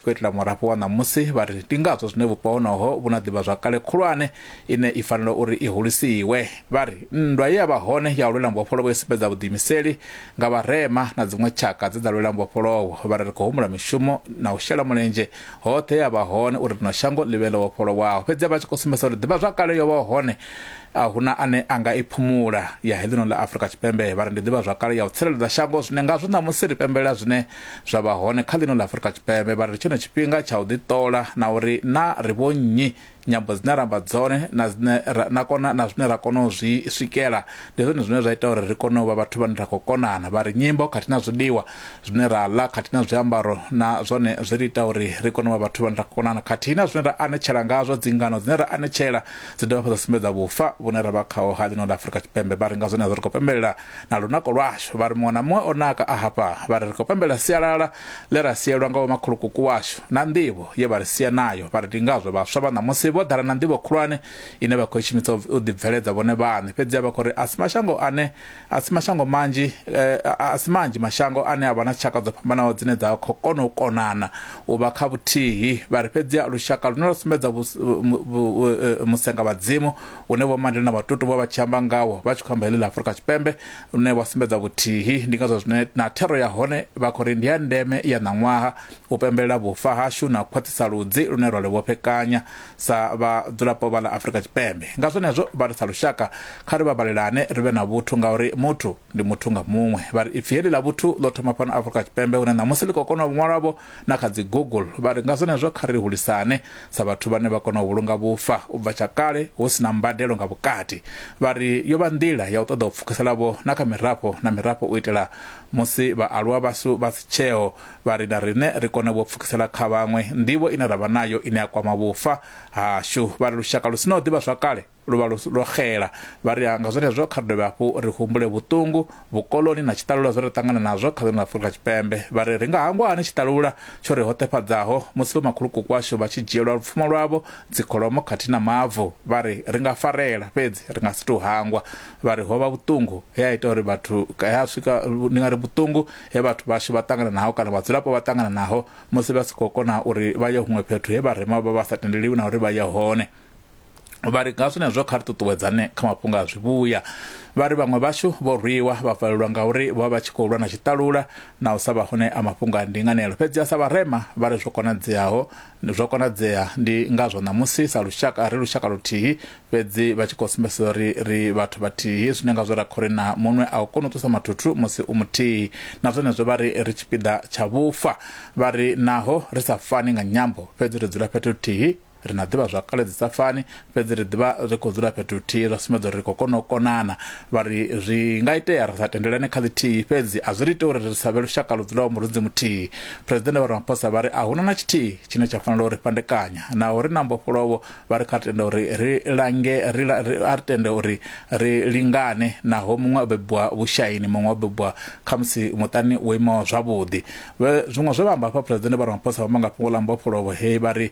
khou itela murafho wa ṋamusi vha ri ndi ngazwo zwine vhupo honoho vhu na ḓivhazwakale khulwane ine i fanela uri i hulisiwe vha ri nndwa ye ya vha hone ya u lwela mbofholowo i sumbedza vhuḓiimiseli nga vharema na dziṅwe tshaka dze dza lwela mbofholowo vha ri ri khou humbula mishumo na u shela mulenzhe hoṱhe ya vha hone uri rino shango ḽi vhe ḽo vhofholowaho fhedzi vha tshi khou sumbedza uri ḓivhazwakale yo vha hone a huna ane a nga i phumula ya heḽino ḽa afurika tshipembe vha ri ndi ḓivhazwakale ya u tsireledza shango zwine ngazwo ṋamusi ri pembelela zwine zwa vha hone kha ḽino ḽa Afurika Tshipembe vha ri tshone tshifhinga tsha u ḓiṱola na uri na ri vho nnyi nyambo dzine ra amba dzone na dzine na kona na zwine ra kona u zwi swikela ndi zwone zwine zwa ita uri ri kone u vha vhathu vhane ra khou konana vha ri nyimbo khathihi na zwiḽiwa zwine ra ḽa khathihi na zwiambaro na zwone zwi ri ita uri ri kone u vha vhathu vhane ra khou konana khathihi na zwine ra anetshela ngazwo dzingano dzine ra anetshela dzi dovha fhedza sumbedza vhufa vhune ra vha khaho ha ḽino ḽa Afurika Tshipembe vha ri nga zwone zwo ri khou pembelela na lunako lwashu vha ri muṅwe na muṅwe o naka a hafha vha ri ri khou pembela sialala ḽe ra sielwa nga vhomakhulukuku washu na nḓivho ye vha ri sia nayo vha ri ndi ngazwo vhaswa vha ṋamusi vho ḓala na nḓivho khulwane ine vha khou i shumisa u ḓibveledza vhone vhaṋe fhedziha vha khou ri a si mashango ane a si mashango manzhi eh, a si manzhi mashango ane a vha na tshaka dzo fhambanaho dzine dza khou kona u konana u vha kha vhuthihi vha ri fhedziha lushaka lune lwa sumbedza eh, musenga vhadzimu une vho mande na vhatutu vha vha tshi amba ngawo vha tshi khou amba heḽi ḽa afurika tshipembe lune vha sumbedza vhuthihi ndi ngazwo zwine na thero ya hone vha khou ri ndi ya ndeme ya ṋaṅwaha u pembelela vhufa hashu na khwaṱhisa ludzi lune rwa livhofhekanya sa vhadzulapo vha ḽa afurika tshipembe nga zwenezwo vha ri sa lushaka kha ri vhabalelane ri vhe na vhuthu ngauri muthu ndi muthu nga muṅwe vha ri ipfi heḽi ḽa vhuthu ḽo thoma fhano afurika tshipembe hune ṋamusi ḽi khou kona u ṅwalwavho na kha dzi google vha ri nga zwenezwo kha ri hulisane sa vhathu vhane vha kona u vhulunga vhufa u bva tsha kale hu si na mbadelo nga vhukati vha ri yo vha nḓila ya u ṱoḓa u pfukiselavho na kha mirafho na mirafho u itela musi vhaaluwa vhashu vha si tsheo vha ri na riṋe ri kone vho pfukisela kha vhaṅwe nḓivho ine ra vha nayo ine ya kwama vhufa hashu vha ri lushaka lu si na u ḓivha zwakale Lu vha lwo xela. Vha ri nga zwenezwo kha ri dovhe hafhu ri humbule vhuṱungu, vhukoloni na tshiṱalula zwe ra ṱangana nazwo kha ḽino ḽa Afurika Tshipembe. Vha ri ri nga hangwa hani tshiṱalula tsho ri hoṱefhadzaho musi vhomakhulukuku washu vha tshi dzhielwa lupfumo lwavho, dzikholomo khathihi na mavu. Vha ri ri nga farela, fhedzi ri nga si tou hangwa. Vha ri ho vha vhuṱungu he ha ita uri vhathu, he ha swika, ndi nga ri vhuṱungu he vhathu vhashu vha ṱangana naho kana vhadzulapo vha ṱangana naho musi vha si khou kona uri vha ye huṅwe fhethu he vharema vha vha sa tendeliwi na uri vha ye hone. Vha ri nga zwenezwo kha ri ṱuṱuwedzane kha mafhungo a zwivhuya. Vha ri vhaṅwe vhashu vho rwiwa vha valelwa ngauri vho vha vha tshi khou lwa na tshiṱalula na u sa vha hone a mafhungo a ndinganelo. Fhedzi a sa vharema vha ri zwo konadzeaho zwo konadzea ndi ngazwo ṋamusi sa lushaka ri lushaka luthihi fhedzi vha tshi khou sumbedzisa uri ri vhathu vhathihi zwine ngazwo ra khori na muṅwe a u koni u ṱusa mathuthu musi u muthihi. Na zwenezwo vha ri ri tshipiḓa tsha vhufa. Vha ri naho ri sa fani nga nyambo fhedzi ri dzula fhethu huthihi Ri na ḓivhazwakale dzi sa fani, fhedzi ri ḓivha ri khou dzula fhethu huthihi zwa sumbedza uri ri khou kona u konana. Vha ri, Zwi nga itea ri sa tendelane kha ḽithihi, fhedzi a zwi ri iti uri ri sa vhe lushaka lu dzulaho murunzi muthihi. Phresidennde Vho Ramaphosa vha ri a hu na na tshithihi tshine tsha fanela u ri fhandekanya. Naho ri na mbofholowo, vha ri kha ri tende uri ri lange ri a ri tende uri ri lingane naho muṅwe o bebiwa vhushaini, muṅwe o bebiwa khamusi muṱani wo imaho zwavhuḓi. Zwiṅwe zwe vha amba hafha, Phresidennde Vho Ramaphosa vha amba nga fhungo ḽa mbofholowo he vha ri,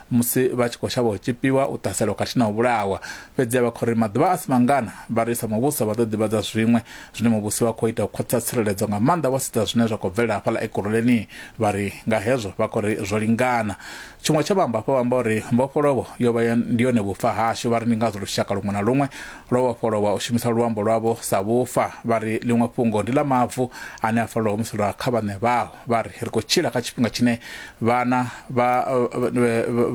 musi vha tshi khou shavha u tshipiwa, u ṱhaselwa khathihi na u vhulawa. Fhedziha vha khou ri maḓuvha a si mangana, vha ri sa muvhuso vha ḓo ḓivhadza zwiṅwe zwine muvhusi wa khou ita u khwaṱhisa tsireledzo nga maanḓa vho sedza zwine zwa khou bvelela hafhaḽa Ekurhuleni. Vha ri nga hezwo vha khou ri zwo lingana. Tshiṅwe tsha vhaambafho vha amba uri mbofholowo yo vha ndi yone vhufa hashu. Vha ri ndi ngazwo lushaka luṅwe na luṅwe lwo vhofholowa u shumisa luambo lwavho sa vhufa. Vha ri ḽiṅwe fhungo ndi ḽa mavu ane a fanela u humiselwa kha vhaṋe vhao. Vha ri ri khou tshila kha tshifhinga tshine vhana vha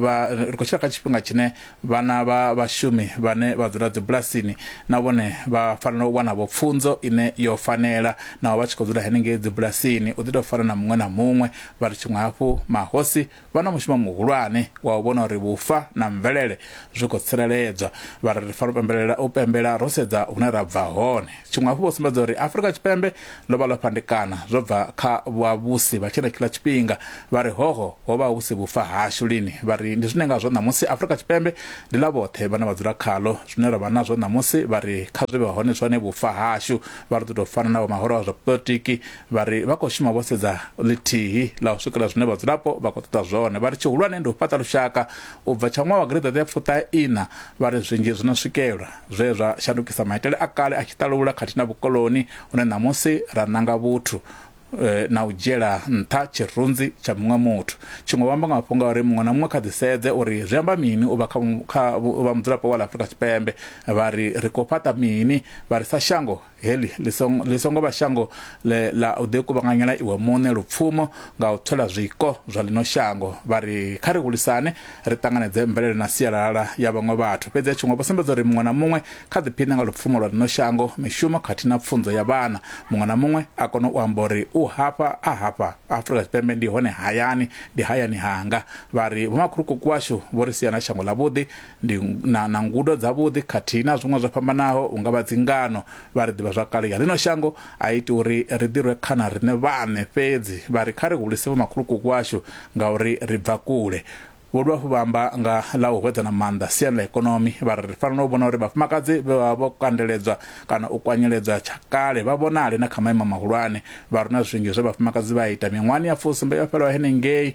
vha ri khou tshila kha tshifhinga tshine vhana vha vhashumi vhane vha dzula dzibulasini na vhone vha fanela u wana vho pfunzo ine yo fanela naho vha tshi khou dzula henengei dzibulasini u ḓi tou fana na muṅwe na muṅwe vha ri tshiṅwe hafhu mahosi vha na mushumo muhulwane wa u vhona uri vhufa na mvelele zwi khou tsireledzwa vha ri ri fanela u pembelela u pembela ro sedza hune ra bva hone tshiṅwe hafhu vho sumbedza uri afurika tshipembe ḽo vha ḽo fhandekana zwo bva kha vhavhusi vha tshenetshiḽa tshifhinga vha ri hoho ho vha hu si vhufa hashu lini vha ri ndi zwine ngazwo ṋamusi afurika tshipembe ndi ḽa vhoṱhe vhane vha dzula khaḽo zwine ra vha nazwo ṋamusi vha ri kha zwi vhe hone zwone vhufa hashu vha ri ḓo tou fana na vho mahoro a zwa politiki vha ri vha khou shuma vho sedza ḽithihi ḽa u swikela zwine vhadzulapo vha khou ṱoḓa zwone vha ri tshihulwane ndi u fhaṱa lushaka U bva tsha ṅwaha wa gireḓeṱe ya fuṱahe-iṋa, vha ri zwinzhi zwi no swikelwa zwe zwa shandukisa maitele a kale a tshiṱalula khathihi na vhukoloni hune ṋamusi ra nanga vhuthu na u dzhiela nṱha tshirunzi tsha muṅwe muthu. Tshiṅwe vho amba nga mafhungo a uri muṅwe na muṅwe kha ḓisedze uri zwi amba mini u vha kha u vha mudzulapo wa ḽa Afrika Tshipembe. Vha ri ri khou fhaṱa mini, vha ri sa shango Heḽi ḽi songo, ḽi songo vha shango ḽe ḽa u ḓikuvhanganyela iwe muṋe lupfumo nga u thola zwiko zwa ḽino shango. Vha ri, Kha ri hulisane, ri ṱanganedze mvelele na sialala ya vhaṅwe vhathu. Fhedzi a tshi ngo vha sumbedza uri muṅwe na muṅwe kha ḓiphiṋe nga lupfumo lwa ḽino shango, mishumo khathihi na pfunzo ya vhana. Muṅwe na muṅwe a kone u amba uri u hafha, a hafha. Afrika Tshipembe ndi hone hayani, ndi hayani hanga. Vha ri, Vhomakhulukuku washu vho ri sia na shango ḽavhuḓi, ndi na, na ngudo dzavhuḓi khathihi na zwiṅwe zwo fhambanaho unga vha dzingano vha ri ḓivha zwakale ya ḽino shango a iti uri ri ḓirwe khana riṋe vhaṋe fhedzi vha ri kha ri hulise vho makhulukuku washu ngauri ri bva kule vho dovha hafhu vha amba nga ḽa u hwedzana maanḓa siani ḽa ikonomi vha ri ri fanela u vhona uri vhafumakadzi vhe vha vho kandeledzwa kana u kwanyeledzwa tsha kale vha vhonale na kha maimo mahulwane vha runa zwinzhi zwe vhafumakadzi vha ita miṅwahani ya fusumbe yo fhelaho henengei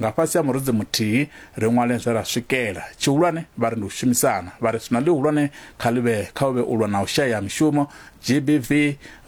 Nga fhasi ha murudzi muthihi, ri ṅwale zwe ra swikela. Tshihulwane vha ri ndi u shumisana. Vha ri swina ḽihulwane kha ḽi vhe kha u vhe u lwa na u shaya ha mishumo, GBV,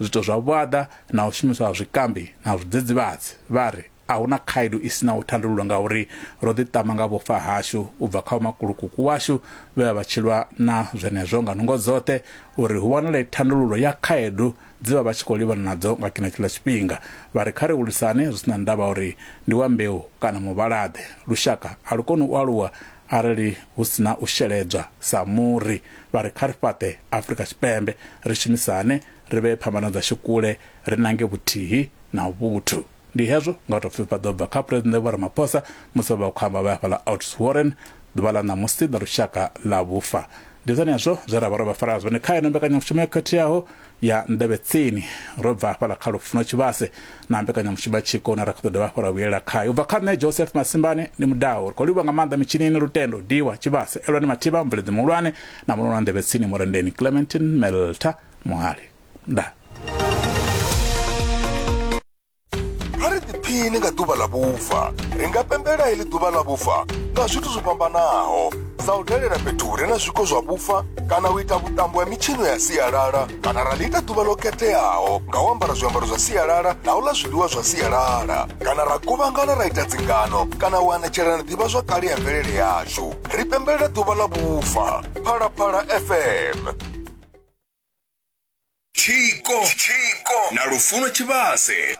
zwiito zwa vhuaḓa na u shumiswa ha zwikambi na zwidzidzivhadzi. Vha ri, A hu na khaedu i si naho thandululo ngauri ro ḓiṱama nga vhufa hashu u bva kha vhomakulukuku washu vhe vha vha tshi lwa na zwenezwo nga nungo dzoṱhe uri hu wanale thandululo ya khaedu dze vha vha tshi khou livhana nadzo nga tshenetshiḽa tshifhinga. Vha ri kha ri hulisane zwi si na ndavha uri ndi wa mbeu kana muvhala-ḓe. Lushaka a lu koni u aluwa arali hu si na u sheledzwa sa muri. Vha ri kha ri fhaṱe Afrika Tshipembe, ri shumisane, ri vhee phambano dzashu kule, ri nange vhuthihi na vhuthu. Ndi hezwo nga u tou pfi vha ḓo bva kha Phresidennde Vho Ramaphosa musi vha vha khou amba vha ya hafhaḽa Oudtshoorn ḓuvha ḽa ṋamusi ḽa lushaka ḽa vhufa. Ndi zwenezwo zwe ra vha ro vha farela zwone kha yeneyo mbekanyamushumo yo khetheaho ya Nḓevhe Tsini. Ro bva hafhaḽa kha Lufuno Tshivhase na mbekanyamushumo ya Tshiko une ra kha ḓo dovha hafhu ra vhuyelela khayo. U bva kha nṋe Joseph Masimbane ndi mudau. Ri khou livhuwa nga maanḓa mitshinini, Lutendo, Diwa, Tshivhase, Elwani Mathiba, mubveledzi muhulwane na muṋe wa Nḓevhe Tsini, Murendeni Clementine Meltha Muhali. nda kha ri ḓiphini nga ḓuvha ḽa vhufa ri nga pembela heḽi ḓuvha ḽa vhufa nga zwithu zwo fhambanaho sa u dalela fhethu hu re na zwiko zwa vhufa kana u ita vhuṱambo ha mitshino ya sialala kana ra ḽi ita ḓuvha ḽo khetheaho nga u ambara zwiambaro zwa sialala na u ḽa zwiḽiwa zwa sialala kana ra kuvhangana ra ita dzingano kana u anetshelana ḓivha zwa kale ya mvelele yashu ri pembelela ḓuvha ḽa vhufa phalaphala fm Tshiko na Lufuno Tshivhase.